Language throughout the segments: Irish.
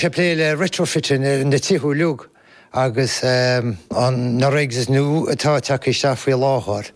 Fair play le retrofit na tithe uilig agus na regs nua atá ag teacht isteach faoi láthair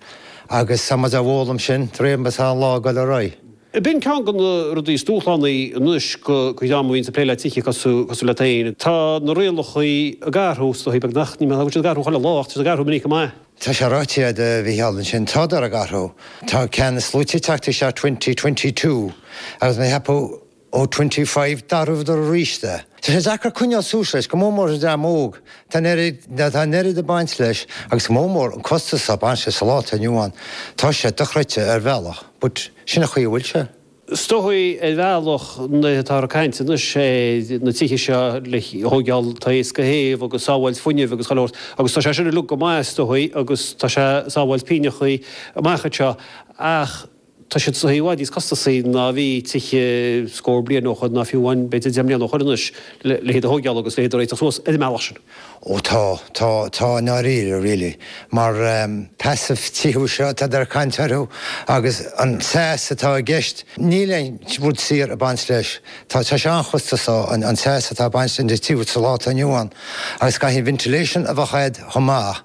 agus tá muid á bhfoghlaim sin de réir mar atá an lá ag dul ar aghaidh. B'in ceann de na rudaí is dúshlánaí. Anois go deimhin bhíonn ag plé le tithe cosúil leat féin. Tá na rialacha ag athrú, is dóigh, beagnach. Ní bhíonn siad ag athrú chuile lá ach tá siad ag athrú minic go maith. Mar atá sé ráite ag Micheál ansin, tádar ag athrú. Tá ceann is luaite ag teacht isteach twenty twenty two agus má cheapann, ó Twenty Five go n-athróidh siad arís é. Tá sé deacair coinneáil suas leis, go mór mór ag dream óg. Tá an oiread, tá an oiread ag baint leis agus go mór mór an costas atá ag baint leis sa lá atá inniu ann. Tá sé dochreidte ar bhealach but sin an chaoi a bhfuil sé. Is dóigh ar bhealach nuair atá tú ag caint anois ar na tithe seo a thóigeáil tá fhios agat ó thaobh ag sábháilt fuinnimh agus chuile shórt agus tá sé sin uilig go maith is dóigh agus tá sé ag sábháilt pínneachaí amach anseo ach Tá siad i bhfad níos costasaí ná a bhí tithe scór bliain ó shoin, ná fiú amháin b'fhéidir deich mbliana ó shoin anois, le hiad a thóigeáil agus le hiad a réiteach suas ar an mbealach sin. Ó tá, tá, tá i ndáiríre, really. Mar ehm, passive tithe seo atádar ag caint orthu agus an teas atá i gceist, níl aon rud saor ag baint leis. Tá, tá sé an-chostasach, an, an teas atá ag baint le tithe sa lá atá inniu ann. Agus caithfidh ventilation a bheith agat chomh maith.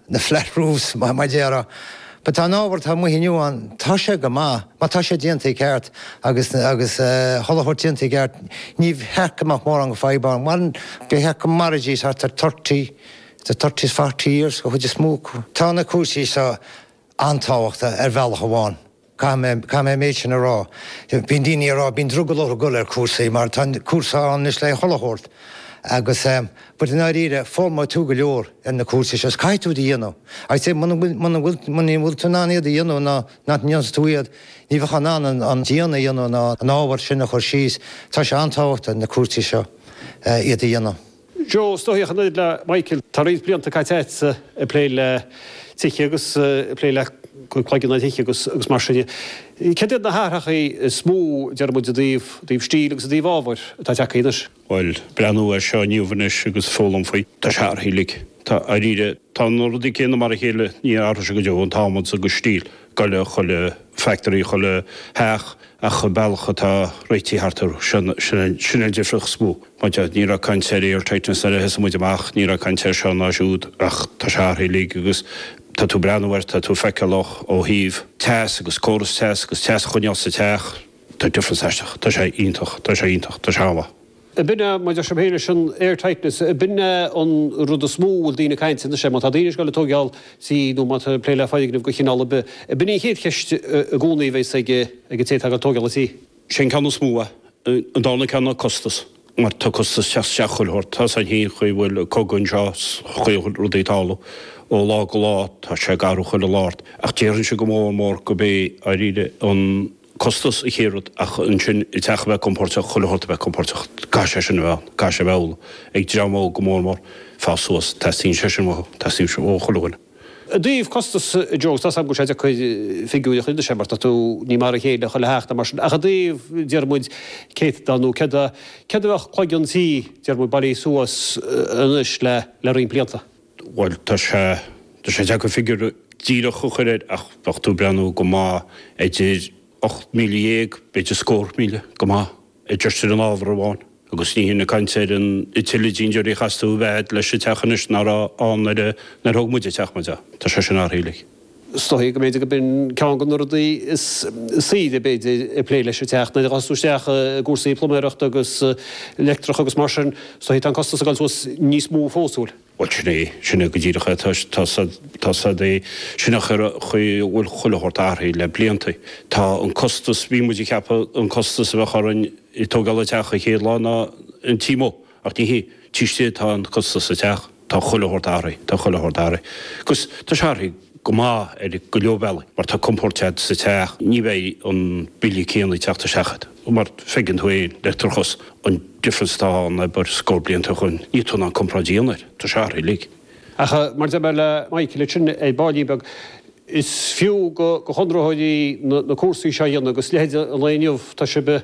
na flat roofs mar a déarfá but tá an ábhar atá amuigh inniu ann, tá sé go maith má tá sé déanta i gceart agus agus chuile shórt déanta i gceart ní cheart go mbeadh mórán d'fhadhb ann mar ba cheart go mairfidís thart ar thirty to thirty forty years an chuid is mó acu. Tá na cúrsaí seo an-tábhachtach ar bhealach amháin. Caithfidh mé an méid sin a rá. Bíonn daoine ag rá, bíonn drogall orthu dul ar chúrsaí mar tá cúrsa ann anois le chuile shórt agus, em, but i ndáiríre, foghlaimeoidh tú go leor ar na cúrsaí seo agus caithfidh tú iad a dhéanamh. Agus te, muna bhfuil, muna bhfuil, muna bhfuil tú in ann iad a dhéanamh ná nach ndéanfaidh tú iad, ní bheifeá in ann an díon a dhéanamh ná an ábhar sin a chur síos. Tá sé an-tábhachtach, na cúrsaí seo, eh, iad a dhéanamh. Joe, Is dóichí anois le Michael, tá roinnt blianta caite agatsa ag plé le tithe agus ag plé le cloigeann na dtithe agus mar sin. Céard iad na hathraithigh is mó, deir muid, ó thaobh, ó thaobh stíl agus i dtaobh ábhair atá tagtha anois? Bhuel, breathnú air seo inniu anois agus foghlaim faoi, tá sé athraithe uilig. Tá, dháiríre, tá na rudaí céanna mar a chéile, ní athróidh sé go deo an t-adhmad agus stíl. chuile, chuile factory, chuile theach, ach an bealach a bhfuiltear réitithe thart orthu, sin an difríocht is mó. Ní raibh caint ar air tightness nuair a thosaigh muid amach, ní raibh caint air seo ná siúd, ach tá sé athraithe uilig agus tá tú ag breathnú air, tá tú ag feiceáil ó thaobh teas agus córas teas agus teas a choinneáil sa teach, tá difference aisteach, tá sé iontach, tá sé iontach, tá sé ana-mhaith. Ab in é, mar a deir sibh féin leis an air tightness, ab in é an rud is mó a bhfuil daoine ag caint anois air, má tá daoine ag goil ag tóigeáil tí nó má tá ag plé le foirgneamh de chineál ar bith, ab in é an chéad cheist i gcónaí a bheas ag an té atá ag tóigeáil an tí. Sé an ceann is mó an darna ceann ná costas, mar tá costas ag teacht isteach chuile shórt. Tá 's a'd féin an chaoi a bhfuil an cogadh anseo an chaoi a bhfuil rudaí ag tarlú ó lá go lá, tá sé ag athrú chuile lá ort, ach déarfainnse go mór mór gurb é, dáiríre, an. costas an chéad rud ach ansin an teach a bheith compóirteach chuile shórt a bheith compóirteach. Caithfidh sé sin a bheith ann. Caithfidh sé a bheith umhal ag dream óg go mór mór ag fás suas. Teastaíonn sé sin uathu. Teastaíonn sé ó chuile dhuine. I dtaobh costas a Joe, tá 's agam go raibh sé deacair figiúirí a chur anois air mar tá tú, ní mar a chéile chuile theach ná mar sin ach i dtaobh, déarfaidh muid, céatadán nó céard a, céard a bheadh cloigeann tí, déarfaidh muid, bailithe suas anois le, le roinnt blianta. Bhuel, tá sé, tá sé deacair figiúr díreach a chur air ach bheadh tú ag breathnú go maith idir 18,000, b'fhéidir scór míle, go maith, a deirtear in ábhar amháin. Agus ní shin ag caint ar an tuilleadh dintiúirí a chaithfeas tú a bheith a'd leis an teach anois nach raibh ann nuair a, nuair a thóg muide teach, mar a déarfá. Tá sé sin athraithe uilig. Is dóigh go mb'fhéidir gurb in ceann de na rudaí is saoire, b'fhéidir, ag plé leis an teach, nuair a ghabhfas tú isteach i gcúrsaí pluiméireachta agus leictreachais agus mar sin, is dóigh, tá an costas ag dul suas níos mó fós, an bhfuil. Bhuel, sin é, sin é go díreach é, tá 's a'd, tá 's a'd, sin é an chaoi a bhfuil chuile shórt athraithe le blianta. Tá an costas, bhí muid ag ceapadh an costas a bheadh orainn ag tógáil an teach an chéad lá ná an taobh amuigh. Ach ní hea, taobh istigh atá an costas sa teach, tá chuile shórt athraithe, tá chuile shórt athraithe. Agus tá sé athraithe go maith ar go leor bealaí, mar tá compóirt a'd sa teach, ní bheidh an bille céanna ag teacht isteach agat, mar feiceann tú féin, leictreachas, an difference atá ann abair scór blianta ó shoin, níl tú in ann comparáid a dhéanamh air, tá sé athraithe uilig. Ach mar a deir mé le Michael ansin ar ball beag, is fiú do chonraitheoirí na cúrsaí seo a dhéanamh agus leithéid an lae inniu, tá sibh